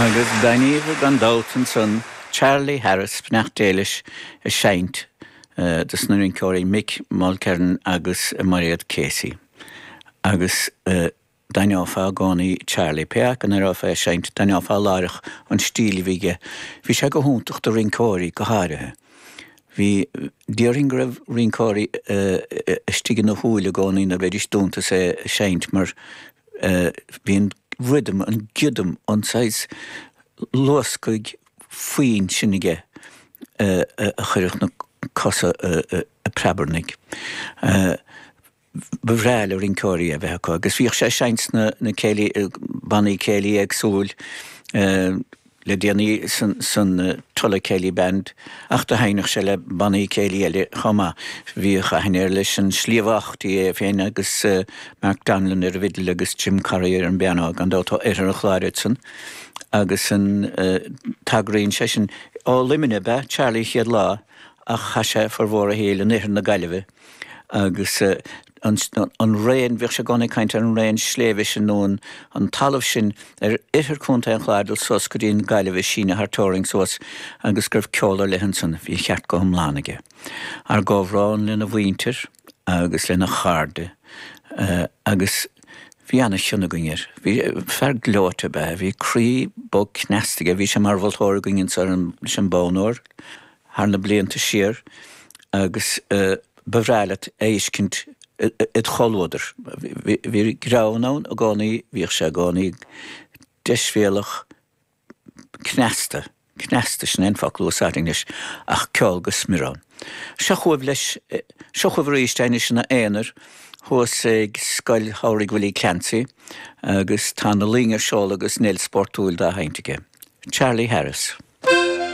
Agus d'aithníobhair gan dabht ansan Charlie Harris, beannacht Dé leis, ag seinnt do sna rinceoirí Mick Mulkerrin agus Mairéad Casey. Agus d'aithneofá i gcónaí Charlie. Pé acu an aireofá é ag seinnt, d'aithneofá láithreach an stíl a bhí aige. Bhí sé go hiontach do rinceoirí go háirithe. Bhí, déarfainn go raibh rinceoirí istigh ina shúile i gcónaí nuair a bheidís dúnta is é ag seinnt mar bhí an rhythm, an giodam, an saghas luascaigh foinn sin aige a chuirfeadh na cosa ag preabarnaigh. Ba bhreá le rinceoirí é a bheith acu agus bhíodh sé ag seinnt sna céilí, bannaí céilí éagsúil, le déanaí san Tulla Céilí Band ach do sheinneadh sé le bannaí céilí eile chomh maith. Bhíodh aithne air leis an Sliabh Aughty, é féin agus Mark Donnellan ar an bhfidil agus Jim Corry ar an bpianó, gan dabht ó Oirthear an Chláir iad san, agus an tagraíonn sé sin, ó Luimneach ab ea Charlie an chéad lá ach chaith sé formhór a shaoil in Oirthear na Gaillimhe. agus an an raon, bhíodh sé i gcónaí ag caint ar an raon sléibhe sin nó an an talamh sin ar oirthear Chontae an Chláir ag dul suas go dtí an Gaillimh ag síneadh thar teorainn suas agus go raibh ceol ar leith ansan, bhí an ceart go hiomlán aige. Ár gcomhbhrón lena mhuintir agus lena chairde agus bhí an-chion againn air. Bhí, fear gleoite ab ea é, bhí croí bog cneasta aige, bhí sé mar mholtóir againn anso ar an, leis an Bonn Óir. thar na blianta siar agus ba bhreá leat é a fheiscint id chomhluadar. Bhí greann ann i gcónaí, bhíodh sé i gcónaí deisbhéalach, cneasta, cneasta, sin é an focal a úsáidfinn leis, ach ceol go smior ann. Seo chugaibh leis, seo chugaibh arís é, anois ina aonar, thuas ag Scoil Shamhraidh Willie Clancy agus tá na loing ar seol agus Neil Spórtúil dá sheinnt aige. Charlie Harris.